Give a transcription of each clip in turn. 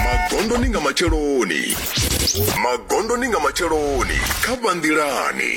magondoni nga matsheloni magondoni nga matsheloni kha vhanḓilani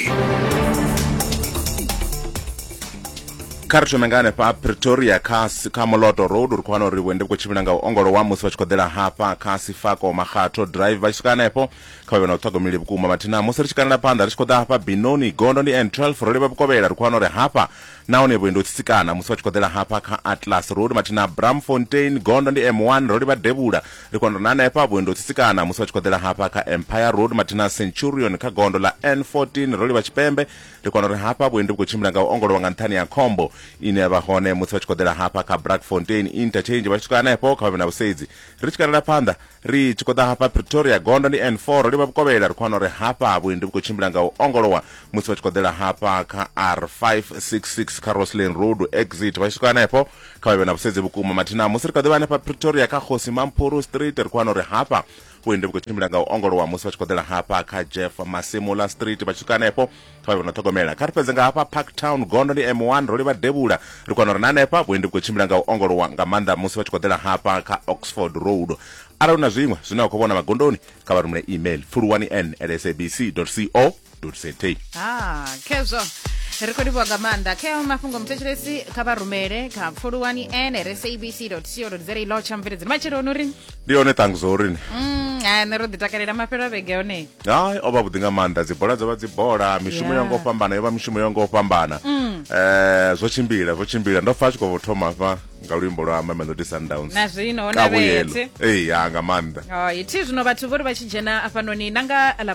kha ri thome nga hanefha pretoria kha si- kha moloto road uri khwana uri vhuende vhu khou tshimbila nga u ongolowa musi vha tshi khou ḓela hafha kha sifako makgatho drive vha tshi swika hanefho kha vha vhe na u ṱhogomeli vhukuma mathina musi ri tshi kalela phanḓa ri tshi khou ḓa hafha binoni gondo ndi n12 ro livha vhukovhela ri khou wana uri hafha Nahone vhuendi ho tsitsikana musi vha tshi khoḓela hafha kha Atlas Road mathina a Braamfontein, gondo ndi M1, ro livha devhula ri khou na hanefha vhuendi ho tsitsikana musi vha tshi khoḓela hafha kha Empire Road mathina a Centurion kha gondo ḽa N14, ro livha tshipembe ri khou ri hafha vhuendi vhu khou tshimbila nga u ongolowa nga nṱhani ha khombo ine ya vha hone musi vha tshi khoḓela hafha kha Braakfontein Interchange vha tshi swika hanefho kha vha vhe na vhusedzi ri tshi katela phanḓa Ri tshi khou ḓa hafha Pretoria, gondo ndi N4, ro livha Vhukovhela, ri khou wana uri hafha vhuendi vhu khou tshimbila nga u ongolowa musi vha tshi khou ḓela hafha kha R566 kha Roslyn Road exit. Vha tshi swika hanefho, kha vha vhe na vhusedzi vhukuma. Mathina musi ri kha ḓi vha hanefha Pretoria kha Kgosi Mampuru Street, ri khou wana uri hafha vhuendi vhu khou tshimbila nga u ongolowa musi vha tshi khou ḓela hafha kha Jeff Masimula Street. Vha tshi swika hanefho, kha vhe na ṱhogomela kha ri fhedze nga hafha park town gondo ndi m1 ro livha devhula ri kona uri na hanefha vhuendi vhu khou tshimbila nga u ongolowa nga maanḓa musi vha tshi khou ḓela hafha kha oxford road arali hu na zwiṅwe zwine wa khou vhona magondoni kha vha rumele email pfuluwani n at sabc co za ah, khezwo ri khou livhuwa nga maanḓa khe mafhungo muthetshelesi kha vha rumele kha pfuluwani n at sabc co za lotsha mveledzini matsheloni uri ndi yone tangiso uri ni Mm, ha nṋe ro ḓi takalela mafhelo a vhege one hayi o vha vhuḓi nga maanḓa dzibola dzo vha dzibola mishumo Yeah. yo ngo fhambana yo vha mishumo yo ngo fhambana eh zwo tshimbila zwo tshimbila ndo pfa a tshi khou thoma hafha nga luimbo lwa mamelodi sundowns na zwino ho na Kavhuyelo. vhethe ee ya nga maanḓa Oh, ithi zwino vhathu vho ri vha tshi dzhena afhanoni na nga ḽa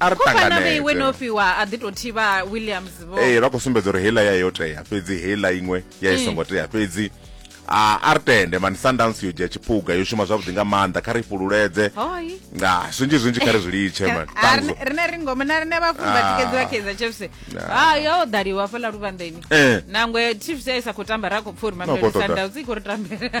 a ri tanganedze no fiwa a ḓi to thivha Williams vho eh vha khou sumbedza uri heila ya yo tea fhedzi heila iṅwe ya i mm. songo tea fhedzi a a ri tende mani sundowns yo dzhia tshiphuga yo shuma zwavhuḓi nga maanḓa kha ri fhululeze nga zwinzhi zwinzhi kha ri zwi litshe mani rine ri ngoma na rine vhafuni vha tikedzi vha kaizer chiefs ha yo ḓaliwa fela luvhanḓeni eh. nangwe chiefs ya isa khou tamba ra khou pfha uri mamelodi sundowns i khou ri tambela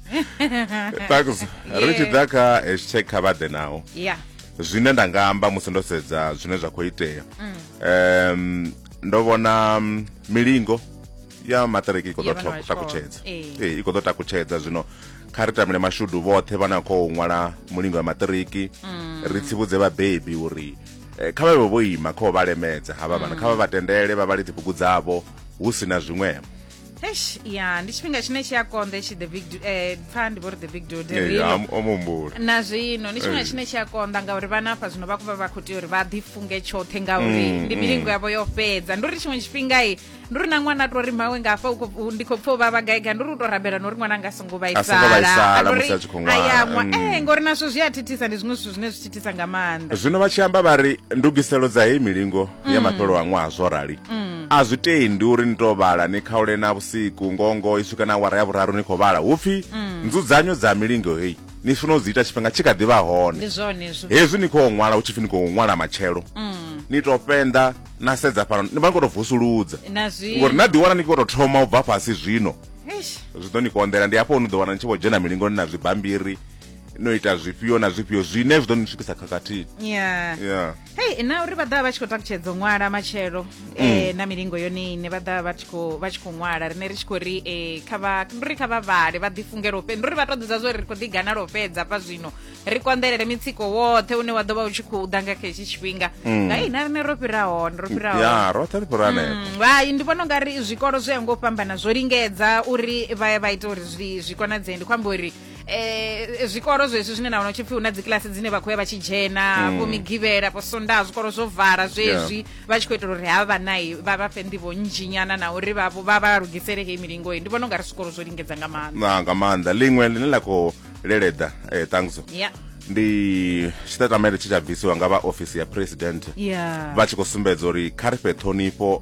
thanks ri tshi ḓa kha hashtag kha vha ḓe naho yeah zwine nda nga amba musi ndo sedza zwine zwa khou itea um ndo vhona mm, milingo ya maṱiriki i khou Ya ḓo vhana vha tho- tshikolo. takutshedza Ee. Ee, i khou ḓo takutshedza zwino kha ri tamile mashudu vhoṱhe vha na khou ṅwala mulingo ya maṱiriki ri tsivhudze vhabebi uri eh, kha vha vhe vho ima kha u vha lemedza havha vhana kha vha vha tendele vha vhale dzibugu dzavho hu si na zwiṅwevho eish ya ndi tshifhinga tshine tshi a konḓa itshi the big du- eh, pfa ndi vho ri the big dude Eh, rino. am- o mumbula na zwino ndi tshifhinga Eh. tshine tshi a konḓa ngauri vhana hafha zwino vha khou vha vha khou tea uri vha ḓifunge tshoṱhe ngauri Mm, ndi mm. milingo yavho yo fhedza ndi uri tshiṅwe tshifhinga i ndi uri na ṅwana a to ri mawe nga hafha u khou- u- ndi khou pfa u vha vhagaiga ndi uri u to rabela na uri ṅwana anga songo A songo vhaisala musi a tshi khou ṅwala. ayaṅwa Mm. ee ngauri nazwo zwi a thithisa ndi zwiṅwe zwithu zwine zwi thithisa nga maanḓa zwino vha tshi amba vha ri ndugiselo dza heyi milingo ya mm. mafhelo a ṅwaha zwo rali mm. a zwi tendi uri ni to vhala ni khaule na vhusiku ngongo i swika na awara ya vhuraru ni khou vhala hu pfi mm. nzudzanyo dza milingo heyi ni funa u dzi ita tshifhinga tshi kha ḓi vha hone hezwi ni khou ṅwala hu tshi pfi ni khou ṅwala matshelo ni to fenda na sedza fhano ni vha ni khou to vusuludza ngori na ḓiwana ni khou to thoma u bva fhasi zwino zwi ḓo ni konḓela ndi hafho ni ḓo wana ni tshi vho dzhena milingoni na zwibambiri no ita zwifhio na zwifhio zwine zwi ḓo ni swikisa khakhathini yeah. yeah. hei na uri vha ḓa vha tshi khou takutshedzo ṅwala matshelo um na milingo yone ine vha ḓa vha tshi khou ṅwala rine ri tshi khou ri um kha vha ndi uri kha vha vhale vha ḓifungele u fhedza ndi uri vha to ḓidza zwo ri ri khou ḓiganala u fhedza fha zwino ri konḓelele mitsiko woṱhe une wa ḓo vha u tshi khou ḓa nga kha hetshi tshifhinga nga mm. ina rine ro fhira hone ro fhira hone ya roṱhe ri fhira hanefho mm, hai ndi vhona ungari zwikolo zwi ya ngo fhambana zwo lingedza uri vha vha ita uri zwi zwi konadzee ndi khou amba uri eh zwikolo zwezwi zwine na wana tshipfi una dzikilasi dzine vha khoya vha tshi dzhena vho migivhela vho sondaha zwikolo zwo vala zwezwi vha tshi khou itela uri havha nayi vha vha fhe nḓivho nnzhinyana na uri vha vha vha lugisele heyi milingo ndi vhona u nga ri zwikolo zwo lingedza nga maanḓa na nga maanḓa liṅwe ḽine ḽa khou leleda eh, ṱangzo ya ndi tshitatamele tshi tsha bvisiwa nga vha ofisi ya president ya vha tshi khou sumbedza uri kha ri fhe ṱhonifho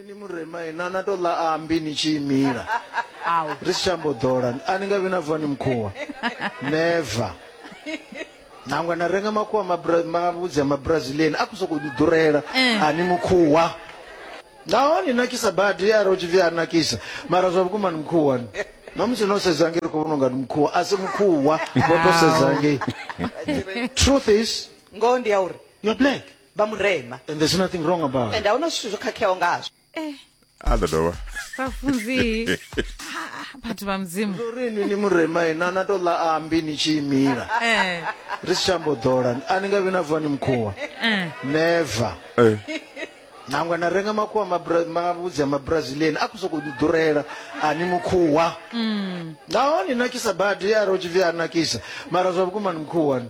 ni murema ina na to ḽa ambi ni tshi imila ri si tshambo ḓola a ni nga vhi na vani mukhuwa never nangwe na renga makhuwa mavhudzi a mabrazilian a khou sokou ḓurela eh. a ni mukhuwa naho ni nakisa badi arali u tshi pfi a nakisa mara zwa vhukuma ni mukhuwa ni nomusi no sedza ngei ri khou vhona unga ni mukhuwa a si mukhuwa vho to sedza ngei truth is ngoho ndi ya uri you're black vha murema and there's nothing wrong about and ahuna zwithu zwo khakheaho ngazwo eh a ḓo dovha vhafunzi Ah, vhathu vha mudzimu ndo ri ni ni murema ina na to ḽa ambi ni tshi imila eh ri si tshambo ḓola a ni nga vhi na vuwa ni mukhuwa eh never Eh, nangwe na renga makhuwa mabra- mavhudzi a mabrazilian a khou sokou ni ḓurela a ni mukhuwa nahone nakisa badi a ro tshipfi a nakisa mara zwa vhukuma ni mukhuwa ni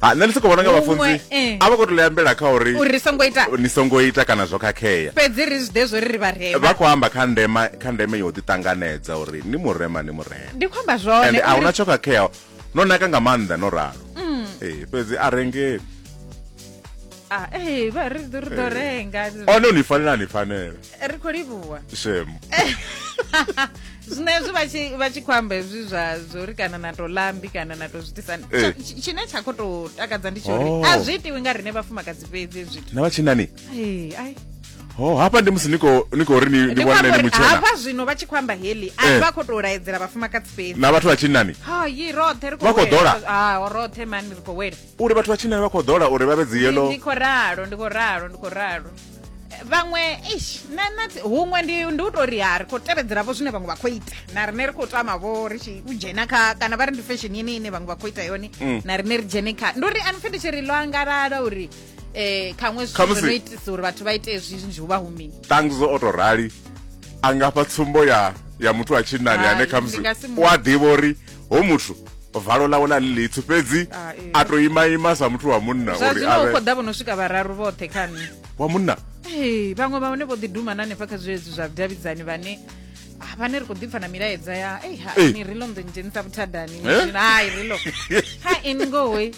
ha nṋe ndi soko vhona nga Huṅwe, vhafunzi eh. a vha khou tou ambela kha uri uri ri songo ita ni songo ita kana zwo khakhea fhedzi ri zwi ḓe zwo ri ri vharema vha khou amba kha ndema kha ndeme yo ḓiṱanganedza uri ni murema ni murema ndi khou amba zwone ende a uri- huna tsho khakhea no naka nga maanḓa no ralo Mm. Eh, fhedzi a rengeli Ah, eh, vha ri ḓo ri ḓo Eh. renga one ni fanela ni fanela ri khou livhuwa shemu zvinezvi vachikwamba izvi zvazvori kana nato lambi kana nato zvitisani eh. chine chakototakadza ndichori oh. azviitiwi nga rine vafumakadzi pedzi zviti navachinani Oh, hapa ndi musi niko niko ri ni ni wana ni mutshela. Hapa zwino vha tshi khwamba heli, a eh. vha kho to laedzela vhafumakadzi fhedzi. Na vhathu vha tshinnani. Ha, yi roṱhe ri kho. Vha kho dola. Ah, o roṱhe mani ri kho wela. Uri vhathu vha tshinnani vha kho dola uri vha vhe dzi yellow. Ndi kho ralo, ndi kho ralo, ndi kho ralo. vhaṅwe eish na na huṅwe ndi ndi u tori ha ri khou tevhedzela vho zwine vhaṅwe vha khou ita na rine ri khou tama vho ri tshi u dzhena kha kana vha ri ndi fashion ine ine vhaṅwe vha khou ita yone mm. na rine ri dzhene kha ndi uri ani pfhe ndi tshi ri ḽo angalala uri eh khaṅwe zwithu zwo no itisa uri vhathu vha ite hezwi zwinzhi hu vha hu mini tangizo o to rali a nga fha tsumbo ya ya muthu wa tshinnani ane khamusi u a ḓivha uri ho muthu valo ḽawe ḽa ḽi ḽitsu fhedzi ah, a to ima ima sa muthu wa munna zwa zwino u khou ḓa vho no swika vhararu vhoṱhe kha nṋe wa munna ee vhaṅwe vha hone vho ḓi duma na hanefha kha zwezwi zwa vhudavhidzani vhane ah, vhane ri khou ḓipfa na milaedza ya ei ha ni ri lo nḓo ndzhenisa vhuthadani eh? hai ri lo ha ini ngohoi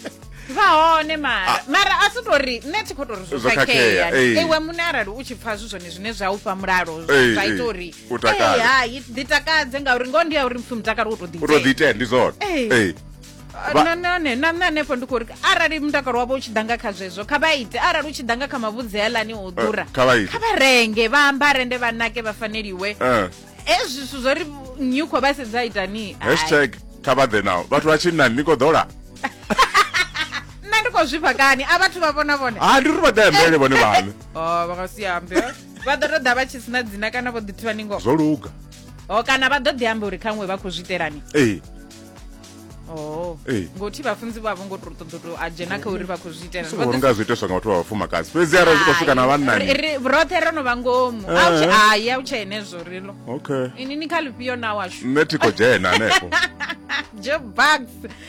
vha hone mara ah. mara a si tori nṋe thi khou tori zwo khakhea iwe muṋe arali u tshi pfa zwi zwone zwine zwa u fha mulalo zwa ita uri u takale Eh, hai ḓi takadze ngauri ngoho ndi ya uri mupfi mutakalo wo to u to ḓi itea ndi zwone Eh. Eh. Vha- na nane na nṋe hanefho ndi khou ri arali mutakalo wavho u tshi ḓa nga kha zwezwo kha vha ite arali u tshi ḓa nga kha mavhudzi healani o ḓura kha vha ite. kha vha renge vha ambare nde vha nake vha faneliwe Eh. hezwi zwithu zwo ri nnyi u khou vha sedza itani Hai. hashtag kha vha ḓe nawo vhathu vha tshinnani ni khou ḓola nṋe ndi khou zwifha kani a vhathu vha vhona vhone ha ndi ri vha ḓe ambele vhone vhaṋe Oh, vha nga si ambe vha ḓo to ḓa vha tshi sina dzina kana vho ḓithivha ni ngoho zwo luga o kana vha ḓo ḓi amba uri khaṅwe vha khou zwi itelani ee Oh. Ee. ngothi vhafunzi vhavho ngo to ṱoḓa to a dzhena kha uri vha khou zwi itelani Vha songo ḓo- nga zwi itiswa nga vhathu vha vhafumakadzi fhedzi arali zwi khou swika na Hai, vhannani ri- ri- roṱhe ro no vha ngomu Eh. Au, hai au tsha henezwo rilo okay ini ni kha lifhio na washu nṋe thi khou dzhena hanefho joe bugs